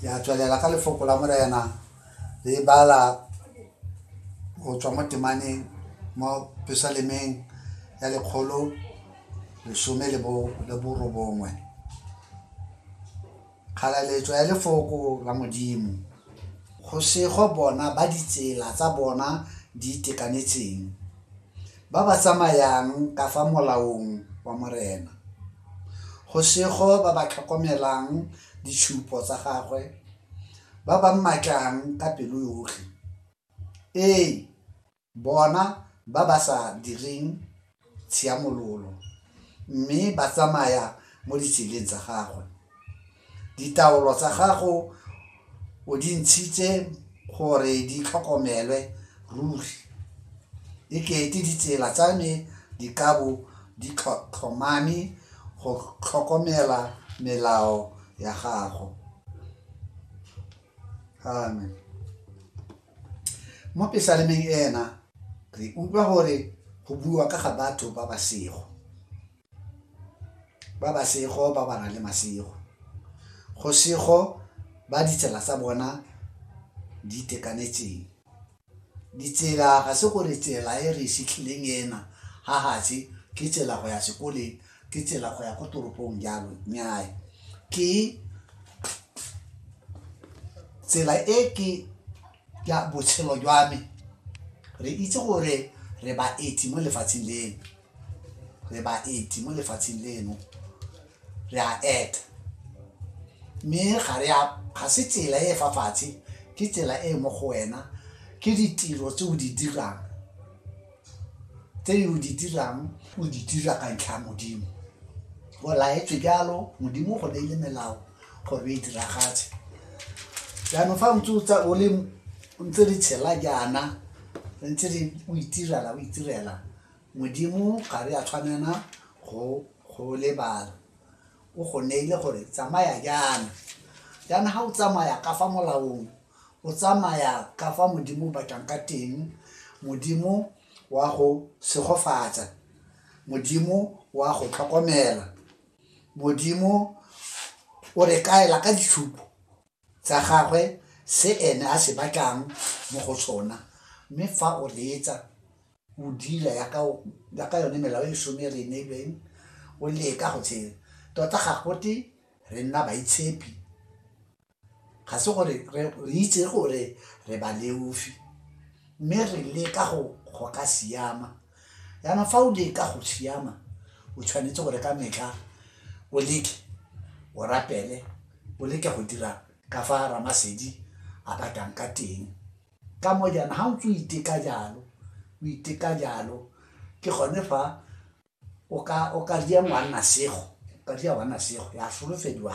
ya tswelela ka lefoko la morena le e bala go tswa mo temaneng mo pesalemeng ya lekgolo lesome le borobongwe kgalaletso ya lefoko la modimo go sego bona ba ditsela tsa bona di itekanetseng Ba ba tsamayang ka fa molaong wa Morena. Go sego ba ba tlhokomelang ditshupo tsa gagwe, ba ba mmatlang ka pelo yotlhe. Ee, bona ba ba sa direng tshiamololo mme ba tsamaya mo ditseleng tsa gagwe. Ditaolo tsa gago o di ntshitse gore di tlhokomelwe ruri. E kete ditsela tsa me di ka bo di tlhomame go tlhokomela melao ya gago. Amen. Mo pesalemeng ena re utlwa gore go buiwa ka ga batho ba ba sego. ba ba sego ba ba na le masego go sego ba ditsela tsa bona di itekanetseng ditsela ga se gore tsela e re setlhileng ena ga gatse ke tsela go ya sekoleng ke tsela go ya ko toropong jalo nyae ke tsela e ke ya botshelo jwa me re itse gore re baeti mo lefatsheng leno re baeti mo lefatsheng leno re a eta mme ga re a ga se tsela e fa fatshe ke tsela e mo go wena ke ditiro tse o di dirang tse o di dirang o di dira ka ntlha ya modimo go laetswe jalo modimo go ne e le melao gore e diragatse jaanong fa ntse o tsa o le ntse re tshela jaana re ntse re o itirela o itirela Modimo ga re a tshwanela go go lebala. O go neile gore tsamaya jaana. Jaana ga o tsamaya ka fa molaong, o tsamaya ka fa Modimo o batlang ka teng, Modimo wa go segofatsa, Modimo wa go tlhokomela, Modimo o re kaela ka ditshupo. tsa gagwe se ene a se batlang mo go sona mme fa o reetsa o dira yaka yone melao e lesome e re e neilweng o leka go tshela tota ga gote re nna baitshepi ga se gore re itse gore re ba leofi mme re leka go ka siama Jaanong fa o leka go siama o tshwanetse gore ka metlha o leke o rapele o leke go dira ka fa ramasedi a batlang ka teng ka mo jaana ga o ntse o iteka jalo o iteka jalo ke gone fa o ka dia ngwanna sego o ka dia ngwanna sego ya solofediwa